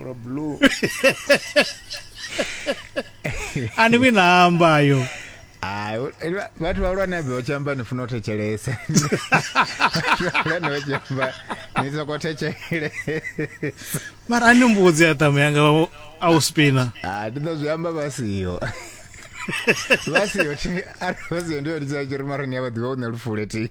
Ora blue. ani vhi namba yo Hayi, u- ela- bathi balwana beochamba nifuna uthejelesa. Balwana beochamba nizokothejelesa. mara ani mbudzi ya tamu yanga wa- a u spina Ah, ndi ḓo zwi amba vha siho. Vha siho thi arali vha siho ndi yone tsha tshiri mara ni ya vha ḓivha u ne lufule thi.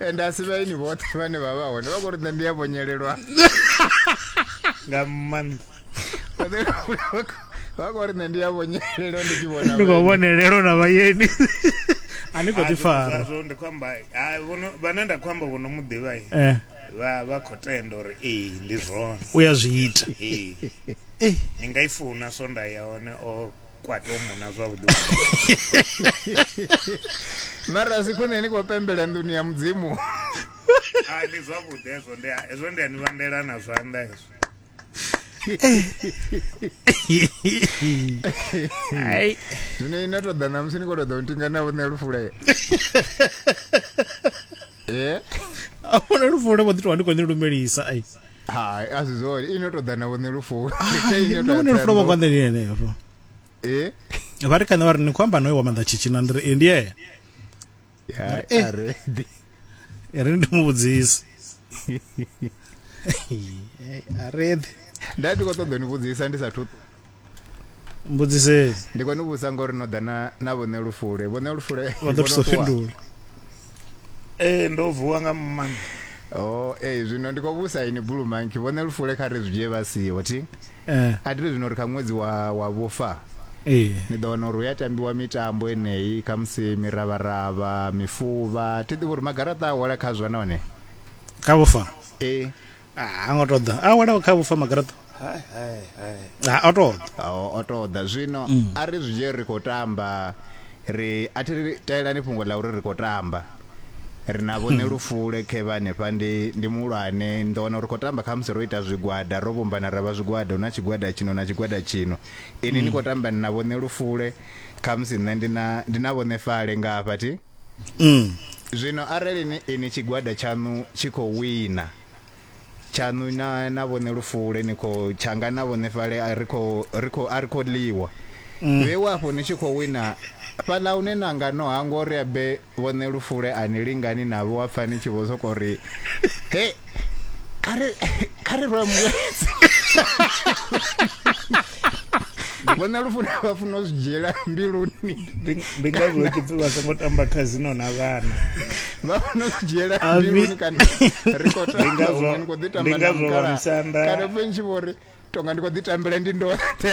and asi vhaini vhoṱhe vhane vha vha hone vha khou ri nṋe ndi a vhonyelelwa nga maanḓa vha khou ri nṋe ndi a vhonyelelwa ndi tshi vhona ndi khou vhonelelwa na vhayeni a ni khou ḓi fara ndi khou amba vhane nda khou amba vhono muḓivha eh. vha vha khou tenda uri ee ndi zwone u ya zwi ita ee ni nga i funa so nda ya hone o kwate u muna zwavhuḓi mara a si khwine ni khou pembela nḓuni ya mudzimu a ndi zwavhuḓi hezwo ndi hezwo ndi a ni vhandela na zwanḓa hezwo ai zwino ine to ḓa namusi ni khou ṱoḓa u ntinga na vhuṋe lufule eh a vhona lufuno vho ḓi tou ndi khou ni lumelisa ai hai a si zwone ino tou ḓa na vhone lufuno no vhone lufuno vho ngwa nḓeni ene afho eh vha ri kana vha ri ni khou amba noyo wa maḓa tshitshina ndi ri e ndi yena eh. a re e re ndi mu vhudzisa a re nda ndi khou ṱoḓa ni vhudzisa ndi sa thu mbudzisei ndi khou ni vhusa ngori no ḓa na na vhone lufule vhone lufule vha ḓo thusa u fhindula ee ndo vuwa nga maanḓa o oh, ee zwino ndi khou vhusa ini bulu manki vhone lufule kha ri zwi dzhie vha siho thi eh. a tiri zwino ri kha ṅwedzi wa wa vhufa ee ni ḓo wana uri hu ya tambiwa mitambo eneyi khamusi miravharavha mifuvha thi ḓivhi uri magaraṱa a hola khazwo nahone kha vhufa ee Ah, ha ngo to ḓa a wela kha vhufa magaraṱa Hai, hai, hai. Ah, o to ḓa Ao, o to ḓa zwino a ri zwi dzhie ri khou tamba ri a thi ri taelani fhungo ḽa uri ri khou tamba ri na vhone lufule khevha hanefha ndi ndi muhulwane ni ḓo wana uri khou tamba khamusi ro ita zwigwada ro vhumbana ra vha zwigwada hu na tshigwada tshino na tshigwada tshino ini ni khou tamba ni na vhone lufule khamusi nṋe ndi na ndi na vhone fale nga hafha thi mm. zwino arali ni ini tshigwada tshaṋu tshi khou wina tshaṋu na na vhone lufule ni khou tshanga na vhone fale a ri khou ri khou a ri khou ḽiwa mm. vhe wafho ni tshi khou wina fhaḽa hune na nga no hangwa uri abe vhone lufule a ni lingani navho wa pfa ni tshi vho sokou ri he kare kare ro amuletse vhona lufuna vha funa u zwi dzhiela mbiluni ndi ngazwo vha tshi pfi vha songo tamba khazino na vhana vha funa u zwi dzhiela mbiluni kana ri khou tamba ndi khou ḓi tamba na mukala kana fentshi vho ri tonga ndi khou ḓi tambela ndi ndoṱhe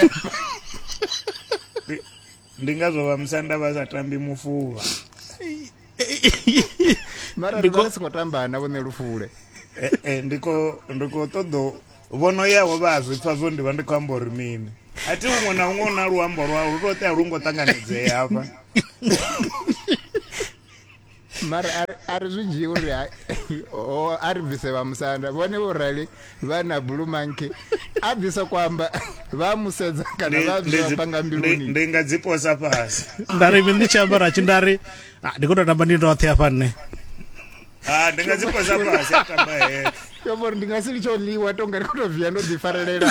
ndi ngazwo vha musanda vha sa tambi mufuvha mara ri vha songo tamba na vhone lufule eh, eh, ndi khou ṱoḓo vhono yaho vha a zwi pfa zwo ndi vha ndi khou amba uri mini a thi huṅwe na huṅwe u na luambo lwau lu to tea lu ngo ṱanganedzea hafha mara a ri zwi dzhii uri a ri bvise vha musanda vhone vho rali vha na blue monkey a ḓi soko amba vha mu sedza kana vha bvisa panga mbiluni ndi nga dzi posa fhasi nda ri ndi tshi ambara tshi nda ri ah, ndi khou tou tamba ndi ndoṱhe hafha nṋe ah, ndi nga dzi posa fhasi a tamba heṱhe yo vhori ndi nga si litsho ḽiwa tonga ri khou tou via ndo ḓifarelela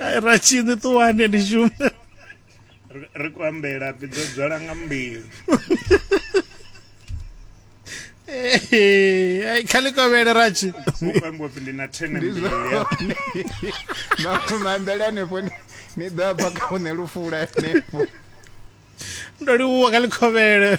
Ai, ra tshini ṱuwani ni shume Ri- ri khou ambela pfi dzo dzwala nga mbilu Eh, ai, kha ḽi kovhele ra tshi u khou ambiwa pfi ndi na thene ndi mbilu ya zwone maambele hanefho ni- ni ḓo abva kha une lufula hanefho ndo livhuwa kha ḽi kovhele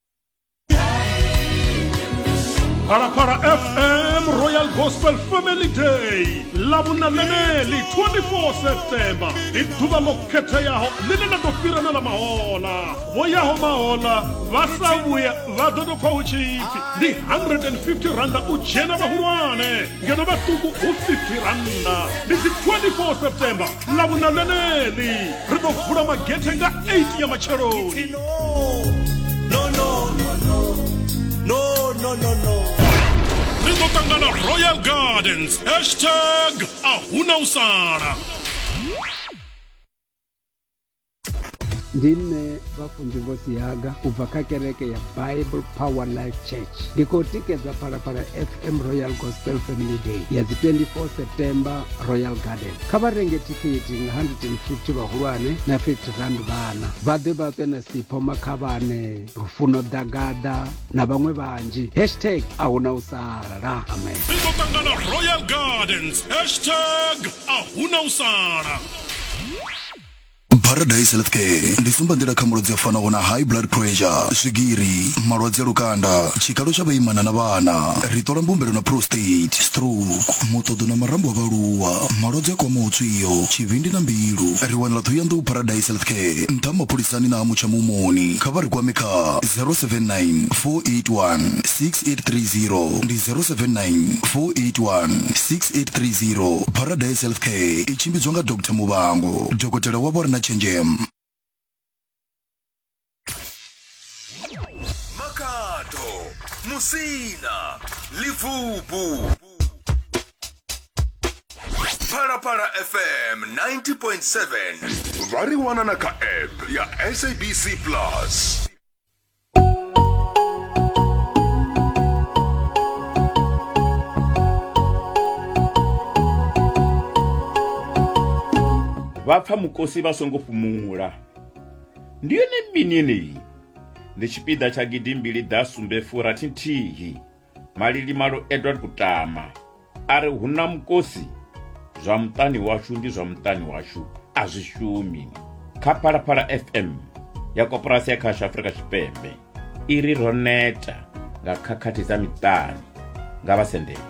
Parapara FM Royal Gospel Family Day lavhunaneneli 24 septemba ndi ḓuvha ḽo khetheaho ḽine ḽa ḓo fhira na ḽa mahola vho yaho mahola vha sa vhuya vha ḓo tou pfa hu tshipfi ndi 150 randa u dzhena vhahulwane ngeno vhaṱuku hu 50 randa ndi dzi 24 septemba lavhuna ḽeneḽi ri ḓo vula magethe nga 8 ya matsheloni ri ḓo ṱangana royal gardens hashtag a huna u sala ndi nṋe vhafunzivosi haga u bva kha kereke ya bible power life church ndi khou tikedza phalaphala fm royal gospel family day ya dzi 24 september royal garden kha vha renge thikhithi nga 150 vhahulwane na 50 rand vhana vha ḓe vha ṱwe na sipho makhavhane lufuno ḓagaḓa na vhaṅwe vhanzhi hashtag a hu na u sala amen ri ḓo ṱangana royal gardens hashtag a hu na u sala paradise health care ndi tsumbanḓila kha malwadze a fanaho na high blood pressure swigiri malwadze a lukanda tshikalo tsha vhaimana na vhana ri ṱola mbumbelo na prostate stroke muṱoḓo na marambo a vhaaluwa malwadze a kwamaho tswio tshivhindi na mbilu ri wanala ṱhohoyanḓou paradise health care nṱha mapholisani na ha mutsha mumoni kha vha ri kwame kha 079 481 6830 ndi 079 481 6830 paradise health care i tshimbidzwa nga Dr. Muvhango, dokotela wavho a re na tshenzhemo. Makhado, Musina, Libvubu. Phalaphala FM 90.7 vha ri wana na kha app ya SABC Plus. vha pfa mukosi vha songo fhumula ndi yone mini yeneyi ndi tshipiḓa tsha gidimbili ḓa sumbe furathi nthihi Malilimalo Edward Kutama a ri hu na mukosi zwa muṱani washu ndi zwa muṱani washu a zwi shumi kha phalaphala fm ya koporasi ya khasho afrika tshipembe i ri ro neta nga khakhathi dza miṱani nga vhasendeli